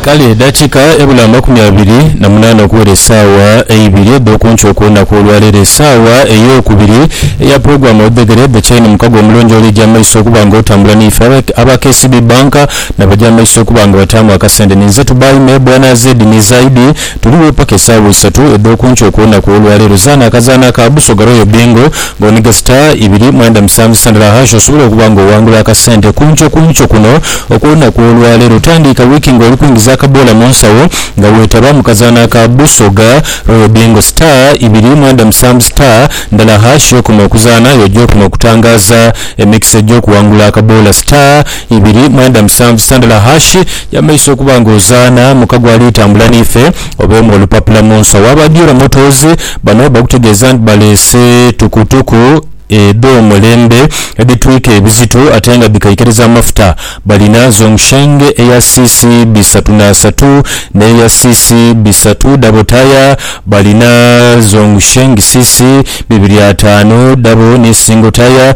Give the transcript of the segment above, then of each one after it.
Kale edhakiika ebula amakumi abiri na munaana okuwera esaawa eibiri edh'oku nkyo okw'olunaku olwaleero, esaawa ey'okubiri eya pulogulaamu Odhegere The Chain, mukago omulonjoola eja amaiso okuba nga otambula n'ife. Aba KCB Bank na baja amaiso okuba nga bataamu akasente ninze Tubaime, Bwana Zeddy ni Zaidi. Tuligho paka esaawa isatu edh'oku nkyo okw'olunaku olwaleero. Zaana akazaanho aka Busoga Royal Bingo nga oniga star ibiri mwenda musanvu sandala hash osobole okuba nga owangula akasente ku nkyo ku nkyo kuno okw'olunaku olwaleero. Tandiika wiiki nga oli kwingiza akaboola mu nsawo nga weetaba mu kazaanho aka Busoga Royal Bingo. Star ibiri mwenda musanvu star ndala hash y'okoma okuzaanha y'oja okoma okutangaaza emikisa egy'okuwangula akaboola. Star. Ibiri mwenda musanvu Sandler Hash yamaiso okuba nga ozaana muka gwa Ali Tambula Niife obeemu olupapula mu nso waaba Diora Motors bano bakutegeeza nti baleese tukutuku edh'omulembe edhitwika ebizito ate nga dhikaikiriza amafuta balina Zhongsheng eya cc bisatu n'asatu n'eya cc bisatu dhabo taaya balina Zhongsheng cc bibiri ataanu dhabo ni single taaya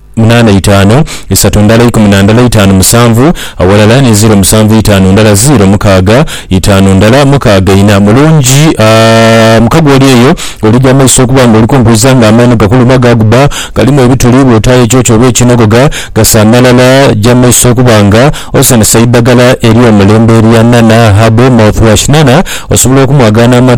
munaana itaanu, isatu ndala ikumi na ndala itaanu musanvu, awalala ni ziiro musanvu itaanu ndala ziiro mukaaga itaanu ndala mukaaga ina. Mulungi, a mukago oli eyo olija amaiso okuba nga olikunguuza nga amaino gakuluma gaaguba galimu ebituli, bw'otaayo ekyokya oba ekinhogoga gasa amalala, ja amaiso okuba nga osanisa eidhagala ery'omulembe erya Nana Herbal Mouthwash. Nana osobola okumwagaana ama.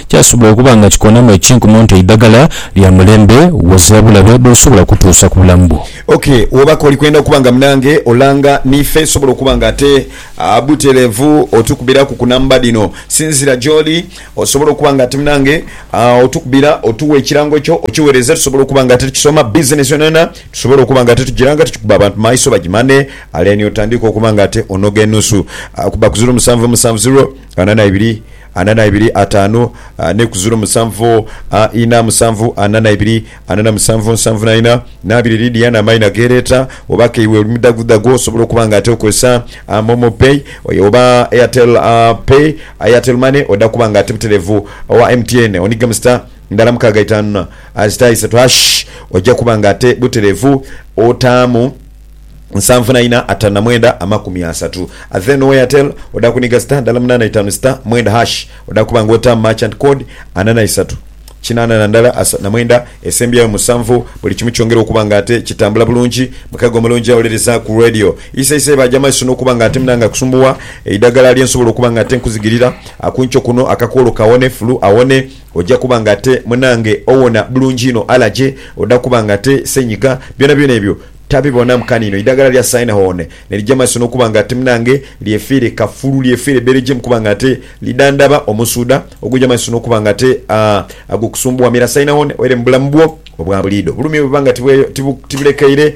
Kyasobola okuba nga kikonamu ekinkumu nti eidagala lya mulembe woze bulabe bwosobola okutuusa ku bulamu bwo. Ok, woba koli kwenda okuba nga munange olanga nife sobola okuba nga ate butelevu otukubiraku ku namba dhino sinzira gyoli osobole okuba nga ati munange otukubira otuwa ekirango kyo okiwereze tusobole okuba nga ate tukisoma business yonayona tusobole okuba nga ate tugira nga tukikuba abantu maiso bagimane aleni otandike okuba nga ate onoga enusu kuba ku ziro musanvu musanvu ziro ana na ibiri Ana na ibiri ataanu n'ekuziro musanvu ina musanvu ana na ibiri ana na musanvu nsanvu na ina na abiri Lydia na amaina gereeta oba ke iwe oli mudhagudhagu osobola okuba nga ate okozesa momo pay oba airtel pay airtel money oda kuba nga ate muterevu owa MTN oniga mu star ndala mukaaga itaanu na star isatu hash oja kuba nga ate buterevu otaamu nsanvu na ina atanu na mwenda amakumi asatu a then owa Airtel oda kuniga star ndala munana itanu star mwenda hash oda kuba nga otamu merchant code ana na isatu kinana na ndala asatu na mwenda esembyayo musanvu buli kimu kyongera okuba nga ate kitambula bulungi mukago omulungi awuliriza ku radio isa isa eba jamaiso nokuba nga ate munange akusumbuwa eidagala lyensobola okuba nga ate nkuzigirira akunkyo kuno akakwolo kawone fulu awone Oja kuba nga ate munange owona bulungi inho alaje oda kuba nga ate senyiga byona byona ebyo tabibonamu kaniino eidagala lya Synehone nelija maiso nokuba nga ate munange lyefiire kafulu lyefiire bberejeemu kuba nga ate lidhandhaba omusuudha oguja maiso nokuba nga ate agwokusumbuwa mira Synehone oere mubulamu bwo obwabuliido obulumi bwebuba nga tibulekeire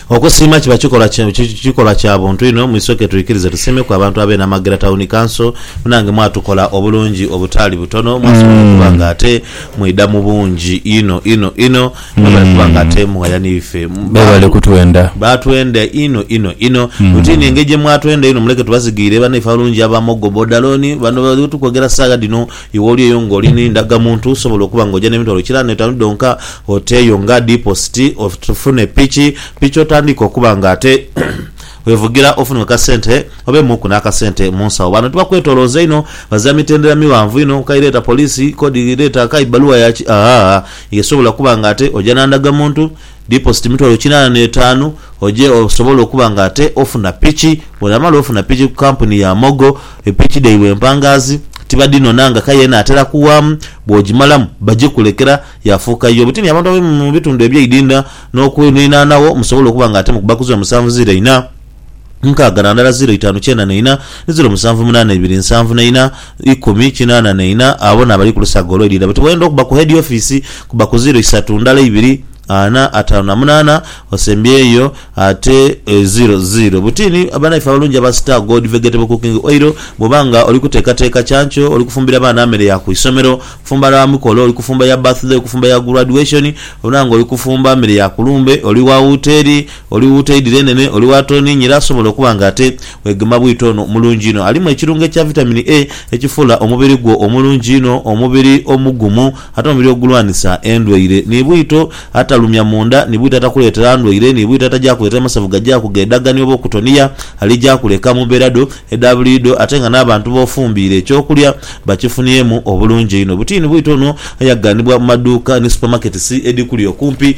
Okusiima kiba kikolwa kya buntu inho, mwisoke twikirize tusiimeku abantu ab'e Namagera Tawuni Kanso. Munange mwatukola obulungi obutaali butono, mwasobola okuba nga ate mwidha mu bungi inho inho inho. Mwebale kuba nga ate mughaya n'ife. Mwebale kutwenda. Baatwenda inho inho inho. Mwitiine engeri gye mwatwenda inho. Muleke tubazigiire banaife abalungi aba Mogo Bodalooni, bano bali tukwogera saagha dhino. Iwe oli eyo ng'oli ni ndagamuntu, osobola okuba ng'oja n'emitwalo kiraano n'etaanu dhonka, ote eyo nga dipositi, ofune piki piki otandiike okuba ng'ate wevugira ofune ku kasente obeemuuku n'akasente mu nsawo. Bano tibakwetoolooza inho, bazira mitendera mighanvu inho, nkayi leeta poliisi, kodi leeta nkayi bbaluwa ya ki, aah, eyo esobola okuba ng'ate oja na ndagamuntu, Dipositi mitwalo kinaana n'etaanu oje osobole okuba nga ate ofuna piki. Bw'onaamala ofuna piki ku kampuni ya Mogo, epiki dhaibwe empangaazi tibadhinona nga kaya enaatera kuwaamu. Bw'ogimalamu bagikulekera yaafuuka yiyo butini abantu abali mu bitundu eby'eidhindha n'okwirinaanagho musobole okuba nga ate mukubaku zoomusanvu ziraina. nkaaga na ndala ziro itaanu kyenda na ina, ni ziro musanvu munaana ibiri nsanvu na ina, ikumi kinaana na ina, abo n'abali ku lusaga olw'eidha buti bw'oyenda okuba ku heedi ofiisi, kuba ku ziro isatu ndala ibiri, ana, ataanu na munaana, osembyeyo ate ziro ziro buti ni bannaife abalungi aba Star Gold Vegetable Cooking Oil. Bw'oba nga oli kuteekateeka kyanco, oli kufumbira baana mere ya ku isomero, kufumba lwa mikolo, oli kufumba ya birthday, okufumba ya graduation, obona nga oli kufumba mere ya ku lumbe, oli wa wuteeri, Oli wuuta eidhi lyenene, oli wa tooniingi era asobola okuba nga ate weegema bwito ono mulungi inho. Alimu ekirungo ekya Vitamin A ekifuula omubiri gwo omulungi inho, omubiri omugumu ate omubiri ogulwanisa endwaire. Ni bwito atalumya munda, ni bwito atakuleetera ndwaire, ni bwito ataja kuleetera masavu gaja kughedaga ni oba okutoniya alija kuleka mu mbeera dho edha buliidho ate nga n'abantu b'ofumbiire eky'okulya bakifuniemu obulungi einho. Butiini bwito ono ayaghanibwa mu maduuka ni supamaketisi edhikuli okumpi.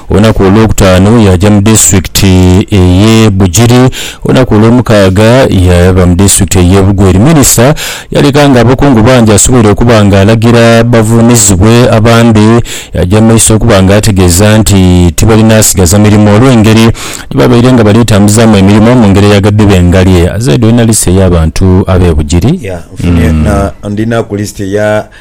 Olunaku olwokutaanu yaaja mu disitulikiti ey'e Bugiri. Olunaku olwomukaaga yaava mu disitulikiti ey'e Bugweri. Minisita yaleka nga abakungu bangi asoboire okuba nga alagira bavuunizibwe abandi. Yaaja mu maiso okuba nga ategeeza nti tibalina sigaza mirimo olw'engeri gye babaire nga bali tambuzaamu emirimo mu ngeri eyagadde bengalye. Zaidi oli na lisiti ey'abantu ab'e Bugiri? Yeah, nfunye na, ndinaku lisiti eya.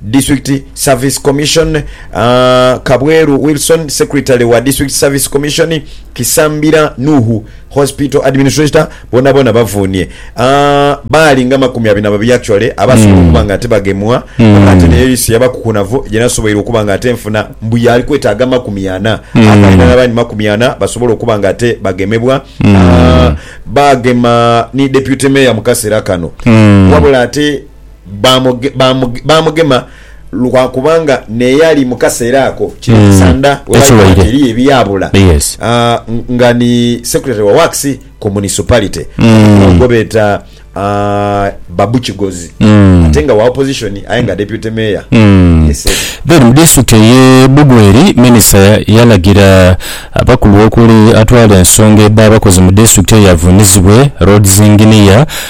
District Service Commission, Kabweru Wilson, Secretary wa District Service Commission, Kisambira Nuhu, Hospital Administrator, boonaboona bavuunhie. Baali nga makumi abiri na babiri actually abaasobola hmm. okuba nga ate bagemwa hmm. ate naye lisi yabakukunavu gyenasoboire okuba nga ate nfuna mbu yaali kwetaaga makumi ana hmm. akalina n'abandi makumi ana basobola okuba nga ate bagemebwa ah, baagema ni Deputy Mayor mu kaseera kano wabula ate baamugema lwa kubanga n'eyali mu kaseera ako kino ekisanda we bali koba nti eriyo ebyabula nga ni Secretary wa Works ku Municipality gwebeeta Babu Kigozi ate nga wa Opposition aye nga Deputy Mayor ye Seeta. Then mu disitulikiti eye Bugweri, minisita yalagira abakulu okuli atwala ensonga edh'abakozi mu disitulikiti eyo avunizibwe, Roads Engineer,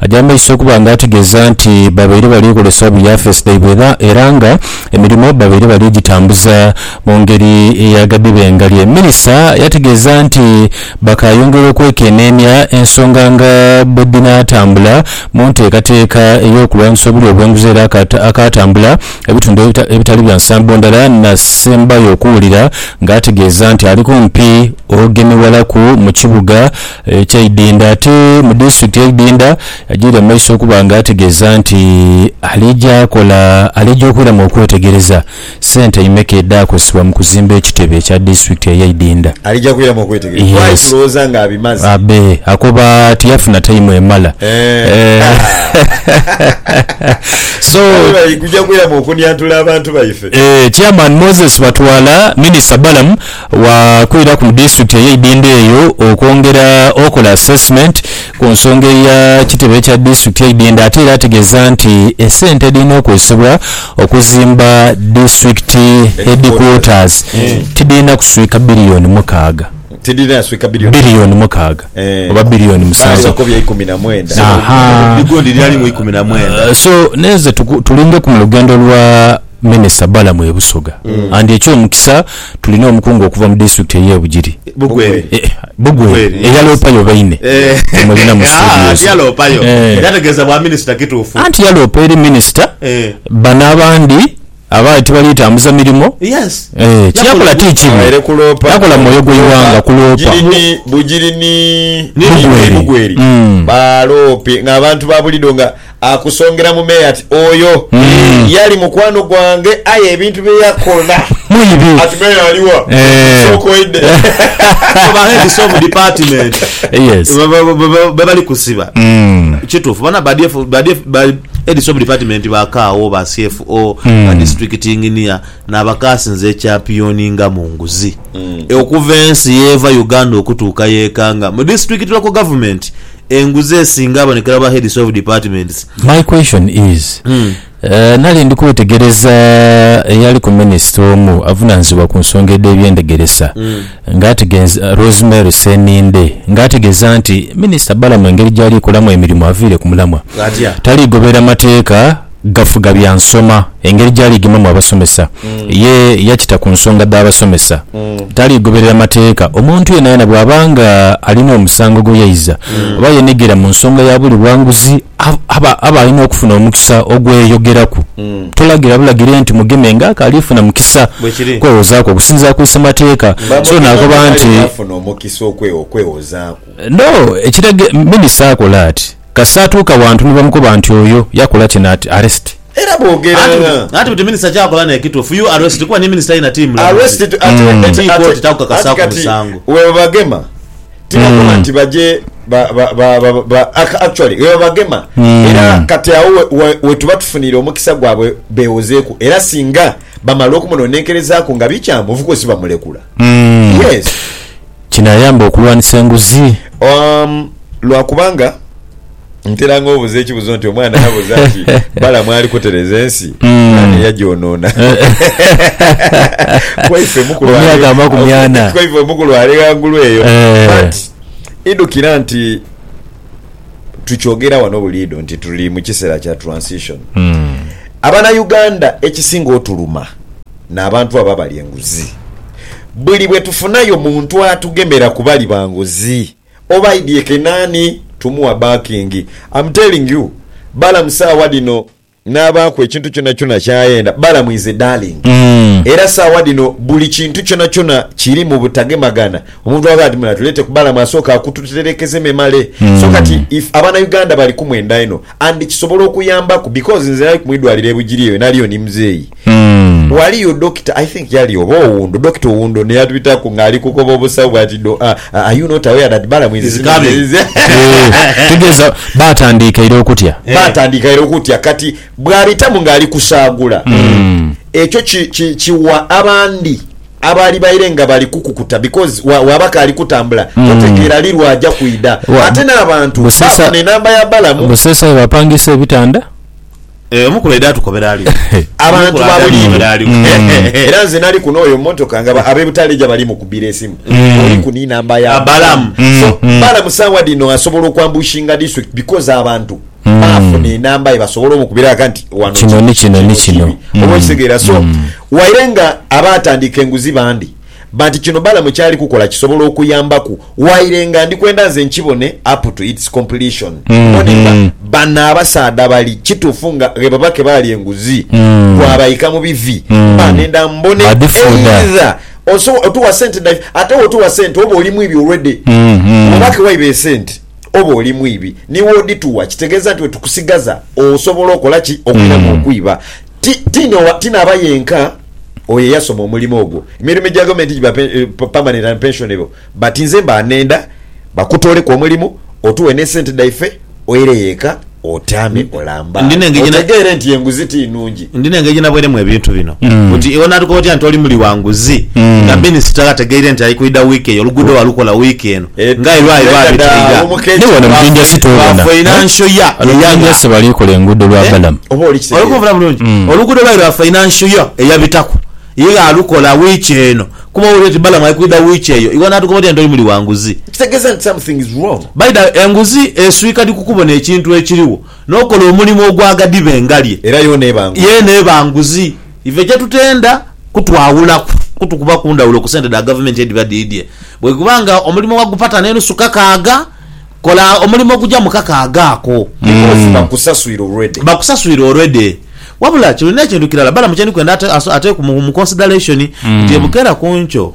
Aja amaiso okuba nga ategeza nti babaire balikolesa obu yafeesi dhaibwe gha era nga emirimo babaire bali gitambuza mu ngeri eya gadhebengalye. Minista yategeza nti bakayongera okwekenenia ensonga nga bwedhinatambula mu ntekateka eyokulwanisa obulyo obwenguzi era akatambula ebitundu ebitali bya nsambo ndala nasembayo okuwulira nga ategeza nti ali kumpi ogemewalaku mu kibuga kya Idinda ate mu disitulikiti ye Idinda yajaire mu maiso okuba nga ategeeza nti alija kola alija okwiramu okwetegereza sente imeka edhakosebwa mu kuzimba ekitebe kya disitulikiti eye Idinda. Alija kwiramu okwetegereza kuba ali kulowooza nga abimaze. Abe akoba tiyafuna taimu emala. Chairman Moses Batwala, Minisita Balamu Waakwiraku mu disitulikiti eye Idindoo eyo okwongera okola assessment ku nsonga eya kitebe kya disitulikiti eye Idindoo ate era ategeeza nti esente edhirina okozesebwa okuzimba disitulikiti headquarters tidhirina kuswika billion mukaaga billion mukaaga oba billion musanvu aha so nenze tulingeku mu lugendo lwa Minister Balaam e Busoga and ekyomukisa tulina omukungu okuva mu district eye Bugiri, Bugweri, eyaloopayo oba ine tumulina mu studios. Anti yaloopa eri minister bano abandi abaali tibali tambuza mirimo. Kyeyakola ti kibi, yakola mu mwoyo gwe ighanga kuloopa. Akusongera mu meere ati, Oyo yali mukwano gwange, aye ebintu bye yakola. Mwibi. Ati, Meere ali wa? Sooka oidhe. So ba heads of department Yes. ba- ba- ba- ba- bebali kusiba Mm. kitufu bona ba DF ba DF ba heads of department ba kaawo ba CFO ba district engineer nabakasinze ekyapioninga mu nguzi E, okuva ensi yeva Uganda okutuuka yekanga mu district local government enguzi esinga abonekera mu ba heads of departments. My question is eh, nali ndi kwetegereza eyaliku minisita omu avunanizibwa ku nsonga edh'ebyendegeresa nga ategeeza, Rosemary Sseninde nga ategeeza nti minisita Balaam engeri gyali kolamu emirimu aviire ku mulamwa, Atya? taligoberera mateeka. gafuga bya nsoma, engeri gyali gemamu abasomesa. Ye yakita ku nsonga dha basomesa. Taligoberera mateeka. Omuntu yenayena bwaba nga alina omusango gwe yaiza oba yenegera mu nsonga ya buli bwanguzi, aba aba alina okufuna omukisa ogweyogeraku. Tolagira bulagire nti mugeme nga akalifuna mukisa kwewozaaku okusinziira ku Isemateeka. So nakoba nti. Bamugema nga alinafuna omukisa okwewozaaku. No, ekiraga minisita akola ati. Kasita atuuka wantu ni bamukoba nti oyo yakola kino ati arrest. Era bwogera nga. Anti buti minister kyakola nekitufu you arrest kuba ni minister yena ti mulamuzi ti kooti takukakasaku musango. Webabagema tibakoba nti baje actually webabagema era kati agho wetuba tufunire omukisa gwabwe bewozeku era singa bamala okumunonenkerezaku nga bikyamu of course bamulekula yes. Kinaayamba okulwanisa enguzi? Umm lwa kubanga ntera nga obuza ekibuzo nti omwana yabuza nti balamu ali kutereza ensi nani eyagyonona kwaife mukulu ali ghangulu eyo but idhukira nti tukyogera wano buliidho nti tuli mukisera kya transition abana Uganda ekisinga otuluma n'abantu abo abali enguzi. Buli bwe tufunayo muntu atugemera ku bali ba nguzi, oba aidha ekene ani, tumuwa baakingi. Am telling you, Balamu saagha dhino n'abaaku ekintu kyonakyona ky'ayenda. Balamu is a darling. Era saagha dhino buli kintu kyonakyona kiri mu butagemagana. Omuntu bw'aba ati muna tuleete ku Balamu asooka akututerekeze memale. So kati if Abanauganda bali ku mwenda inho and kisobola okuyambaku because nze nali ku mu idwaliro e Bugiri eyo naliyo ni muzeeyi. Ghaliyo Dokita, I think yali oba Owundo, Dokita Owundo n'eyatubitaku ng'ali kukoba obusawo bwati do, a, a, Are you not aware that Balamu is coming? Eeh, tegeeza baatandiika ira okutya. Baatandiika ira okutya. Kati bw'abitamu ng'ali kusaagula, ekyo ki, ki, kiwa abandi abaali baire nga bali kukukuta, because wa, waaba kaali kutambula, totegeera li lw'aja kwidha. Wa, Ate n'abantu Buseesa, baafuna enamba ya Balamu. Buseesa we baapangiisa ebitanda. Eh, omukulu aidha atukobera aliwo abantu Omukulu aidha babulidho atukobera aliwo. era nze nali kuno oyo motoka nga ba- abebutaleja bali mukubira esimu oli ku ninamba ya Balamu. so balamu sawa dino asobola okwambushinga district because abantu bafuna enamba ye basobola omukubira aka nti wano Kino kiri, ni kino, ni kino. kibi. oba okitegeera so waire nga aba atandika enguzi bandi But kino Balamu kyali kukola kisobola okuyambaku waire nga ndi kwenda nze nkibone up to its completion mbone nga bano abasaadha bali kitufu nga ghebabake baalya enguzi gwabaika mu bivi mba nenda mbone either osobo otuwa sente dha ate wotuwa sente oba oli mwibi already webake waiba esente oba oli mwibi niwodituwa kitegeza nti wetukusigaza osobola okola ki okwiramu okwiba Ti, ti n'owa, ti n'aba yenka oyo eyasoma omulimo ogwo. Emirimo egya gavumenti giba pe, permanent and pensionable, but nze mba nenda bakutooleku omulimo, otuwe n'esente dhaife, oireyo eka otyame olamba, Ndi n'engeri gye na- otegeere nti enguzi ti nnungi. Ndi n'engeri gye nabweiremu ebintu bino. Oti iwe onaatukoba otya nti oli muli wa nguzi nga minisita ategeire nti ali kwidha wiiki eyo, oluguudo walukola wiiki eno, Nga e Lwayi bwabitaiga ni wano mu Jinja City obona bano Manjasi bali kola enguudo lwa balamu. Oluguudo lwayi lwa Financial Year eyabitaku ye yaalukola wiiki eno kuba owulira nti balamu ali kwidha wiiki eyo iwe naatukoba otya nti oli muli wa nguzi? By the way enguzi eswika dhi ku kubona ekintu ekiriwo n'okola omulimu ogwaghadiba engalye yeena eba nguzi. Ife kye tutenda kutwawulaku kutukuba ku ndhawulo ku sente dha Gavumenti edhiba dhiidhie. Bwekuba nga omulimo wagupata n'enusu kakaaga, kola omulimo ogugya mu kakaaga ako. Because bakusaswire already. Bakusaswire already. Wabula kino n'ekintu kirala Balaam kye ndi kwenda ateekwe mu consideration nti e Bukeera ku nkyo,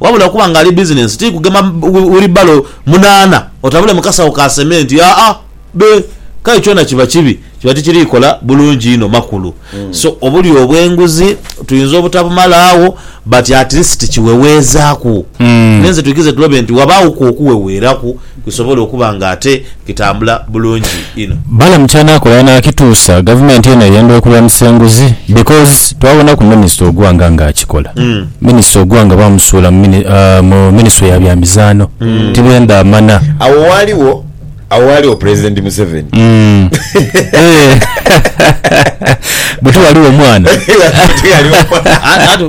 Wabula okuba nga ali bizinensi ti kugema wilibalo munaana otabule mu kasawo ka sementi, aa be, kale kyona kiba kibi kiba tikiri kola bulungi inho makulu. So obulyo obw'enguzi tuyinza obutabumala agho but at least kiweweezaaku. N'enze twikize tulobe nti wabaaghoku okuweweeraku. kisobole okuba nga ate kitambula bulungi inho. Balaam kyanakola yanakituusa gavumenti eno eyenda okulwanisa enguzi because twabonaku minister Ogwanga nga akikola. Minister Ogwanga bamusuula mu ministry ya bya mizaano tibenda amana. Awo waaliwo awo waaliwo president Museveni. Buti waliwo mwana. Buti waliwo mwana.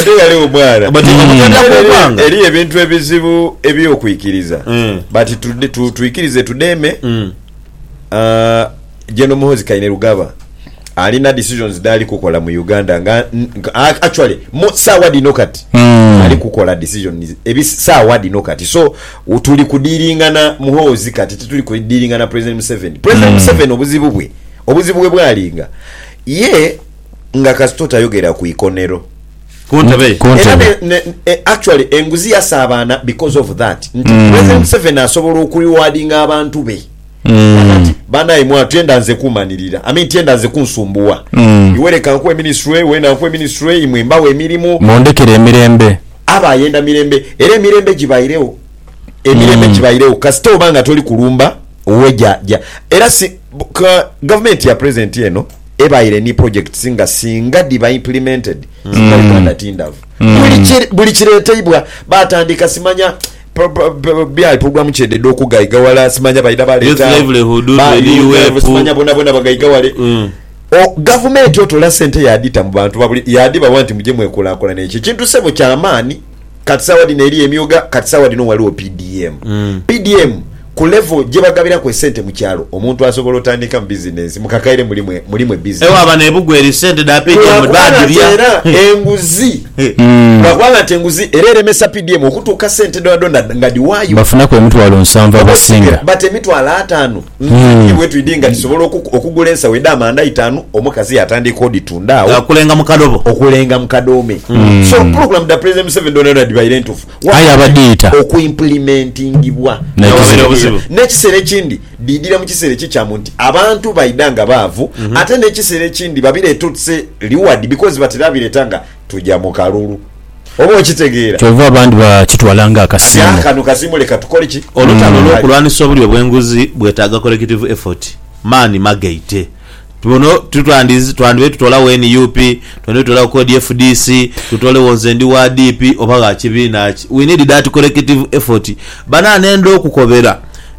Buti waliwo mwana. Eriyo ebintu ebizibu. Eby'okwikiriza Eh. but tude- tu- twikirize tudeme Mm. Ah, General Muhoozi Kainerugaba alina decisions dhali kukola mu Uganda nga n- nka- a- actually mu saawa dhino kati Mm. ali kukola decisions ebi saawa dhino kati so u- tuli kudiringana Muhoozi kati tituli kudiringana President Museveni President Museveni obuzibu bwe obuzibu bwe bwalinga ye nga kasita otayogera ku ikonero Ku ntebe ye. Era ne, ne, e, actually enguzi yasaabaana because of that nti mm. President Museveni asobola okurewardinga abantu be mm. banaye mwa tyenda nze kumanirira I mean tyenda nze kunsumbuwa mm. iwe leka nkuwe ministry wena nkuwe ministry imwe mbawo emirimu mundekere emirembe aba ayenda mirembe era emirembe gibairewo emirembe mm. gibairewo kasita oba nga toli kulumba owe ja ja era si ka, gavumenti ya president eno ebaire ni projects nga singa dhiba implemented singa Uganda ti ndhavu. Buli kireteibwa batandika simanya byayi programme kyedhedha okugaiga wala simanya baidha baleeta UNEP simanya bonabona bagaiga wale. Gavumenti otola sente yadhita mu bantu yadhibawa nti muje mwekulakulane ekyo ekintu sebo kyamaani. Kati sawa dhino eriyo emyuga kati sawa dhino waliwo PDM. PDM ku level gyebagabiraku esente mu kyalo omuntu asobola otandikamu business mukakaire muli mwe muli mwe busy. Ewa bano ebugweri sente dha PDM Lwa kubanga nti badhirya. era enguzi lwa kubanga nti enguzi era eremesa PDM okutuuka sente dhona dhona nga dhiwaayo. Bafunaku emitwalo nsanvu abasinga. But emitwalo ataano. Nkanhi bwetwidhi nga tisobola okugula ensawo edhamanda itaanu omukazi yatandika odhitunda agho. Okulenga mu kadobo. Okulenga mu kadoome. So pulogulamu dha Pulezidenti Museveni dhoonadhoona dhibaire ntuufu wabula okuimpulimentingibwa n'ekizibu obuzibu. N'ekiseera ekindi dhiidhira mu kiseera ekikyamu nti abantu baidha nga baavu ate n'ekiseera ekindi babireeta oti se riward because batera bireeta nga tuja mu kalulu. Oba okitegeera? Kyova abandi bakitwala nga Kati akasiimo. kano kasiimo leka tukole ki? Olutalo Kale. olw'okulwanisa obulyo bw'enguzi bwetaaga collective effort, maani magaite. Buno tutandi twandibaire tutoolagho nup, twandibaire tutoolagho kodi fdc, tutoolegho nze ndi wa DP oba gha kibiina ki. We need that collective effort. Banae nenda okukobera,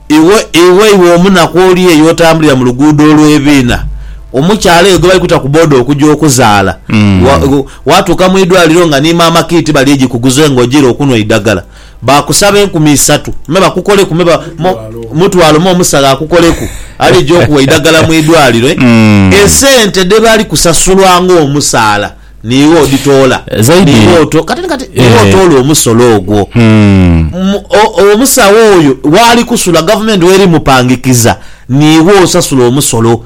iwe iwe iwe omunaku oli eyo otambulira mu luguudo olw'ebiina, omukyala eyo gwe bali kuta ku boda okuja okuzaala, wa, Waatuuka mu idwaliro nga ni maama Kiiti bali egi kuguze nga ojiire okunhwa eidagala. Baakusaba enkumi isatu me bakukoleku me mutwalo me omusawo akukoleku ali egi okuwa eidagala mu idwaliro. Esente dhe bali kusasulwa ng'omusaala niiwe odhitoola, niiwe otoola omusolo ogwo. Omusawo oyo waali kusula gavumenti w'eri mupangikiza niiwe osasula omusolo.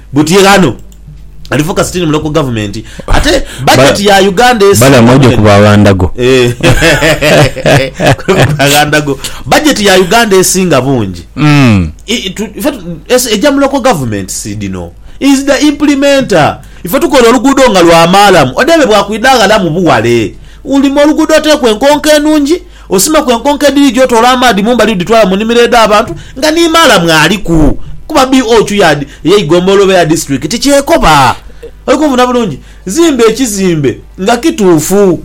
Buti ye ghano ali foka sitini muloka ku gavumenti ate bajeti ya Uganda esi balamu oja kuba aghandago aghandago bajeti ya Uganda esinga bungi mm. eja muloko gavumenti si dino is the implementer ife tukola oluguudo nga lwa maalamu odebe bwakwidha ghalamu buwale ulima oluguudo oteeku enkonko enungi Osimaku enkonko edhiri gyoti olwa maadhi mu mbali odhitwala mu nimiro edha bantu nga ni maala mwaliku kuba BOQ yaadi ey'eigombolola oba eya disiturikiti kyekoba. Oli kunfuna bulungi? Zimba ekizimbe nga kituufu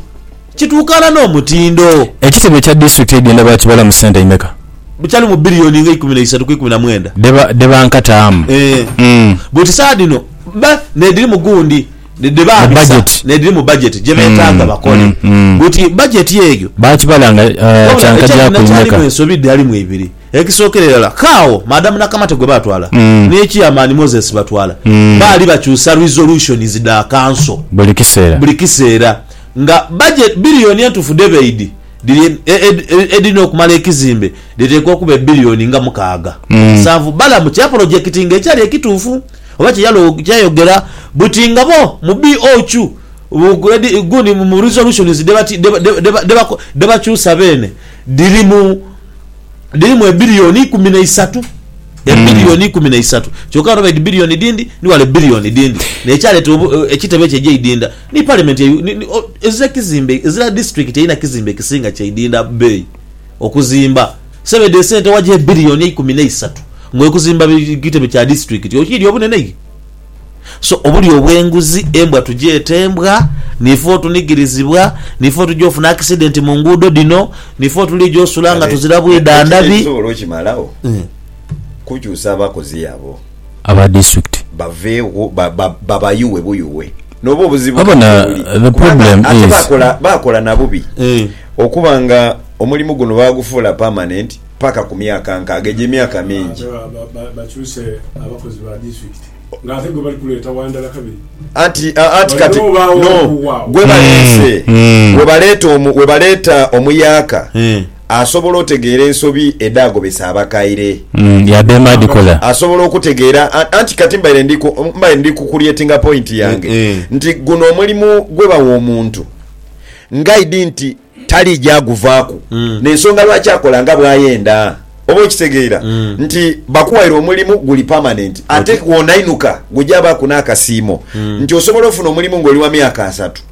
kituukaana n'omutindo. Ekizimbe kya disiturikiti eidhenda baakibala mu sente imeka? Bukyali mu biliyoni nga eikumi na isatu ku ikumi na mwenda. Dhe bankataamu. Eeh. Buti saadhino bba n'edhiri mu gundi. dhebabisa n'edhiri mu bajeti gye beetaaga bakole. Buti bajeti eyo wabula ekyalina kyalimu ensobi dhalimu ibiri. Ekisookera irala, k'agho Madam Nakamate gwe baatwala ni Chairman Moses Batwala baali bakyusa resolutions dha kanso buli kiseera nga bajeti biliyoni entuufu dhe baidhi dhiri edhirina okumala ekizimbe dhiteekwa okuba ebiliyoni nga mukaaga mu musanvu balamu kya polojekitinga ekyali ekituufu. Oba kyeyayogera buti nga bo mu BOCU guni mu resolutions dhebakyusa beene dhirimu dhirimu ebillion ikumi naisatu ebillion ikumi naisatu kyoka ghano baidhi billion dhindi ni ghale billion dhindi nekyaleta ekitebe kye gyeidinda ni parliament ezira kizimbe ezira district erina kizimbe kisinga kyeidinda beeyi okuzimba. Sebedi esente wagya ebilioni eikumi neisatu nga okuzimba kitebe kya disiturikiti okiidhi obunene iye? So obulyo obwenguzi embwa tugyete embwa nife otunigirizibwa nife otugya ofuna akisidenti mu nguudo dhino nife otuligya osula nga tuzira bwidha ndhabi. Ekisobora okimalagho kukyusa abakozi abo Aba district. baveegho babayughe buyughe noba obuzibu Wabona, the problem is. Ate bakola nabubi. Okuba nga omulimu guno baagufuula pamanenti paka ku myaka nkaaga egyo emyaka mingi. Anti kati no gwe baleese, we baleeta omuyaaka asobola otegeera ensobi edhaagobesa abakaire, asobola okutegeera. Anti kati mbaire ndi ku kulyetinga pointi yange nti guno omulimu gwe bawa omuntu. Ngaidi nti taliija guvaaku, n'ensonga lwaki akola nga bw'ayenda. Oba okitegeera nti bakuwaire omulimu guli pamanenti ate Okay. kw'onainuka gujaabaaku n'akasiimo. Nti osobola ofuna omulimu ng'oli wa myaka asatu,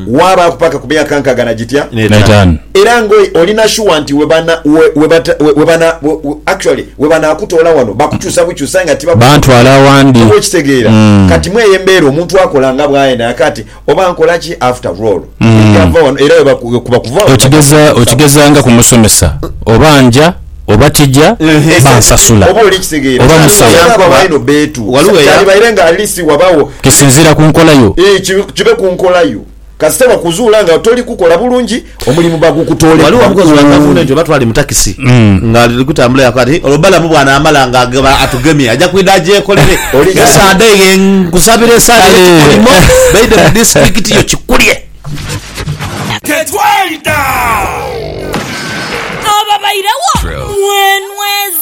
waabaaku paka ku myaka nkaaga na gitya? N'etaanu. Era nga olina shuwa nti we bana, we, we bata, we, we bana, we, we, actually, we banaakutoola wano bakukyusa bukyusa aye nga tibakutuukiriza. Bantwala awandi. Oba okitegeera? Mm. Kati mw'eyo embeera omuntu akola nga bw'ayenda. Kaati Oba nkola ki after roll ebyava wano era bwekuba kuva wano Okigeza okigeza nga kumusomesa oba nja oba tija bansasula oba oli kitegeera oba Kyali musawo wayamba baino beetu Waliwo eya- Kyalibaire nga at least wabawo kisinziira ku nkola yo. Eeh kibe ku nkola yo kasita bakuzuula nga toli kukola bulungi Omulimu bagukutoole Waliwo omukozi wa kukundi. gavumenti oba twali mu takisi nga ali kutambula yakoba ati olwo balamu bwanaamala nga ageba atugemye aja kwidha agyekolere. Oli- Ye Sande ye nkusabira esaala Kale. ey'ekikolimo baidhe mu disitulikiti yo Kikulye. Tetwayita! Ababairewo mwenweza.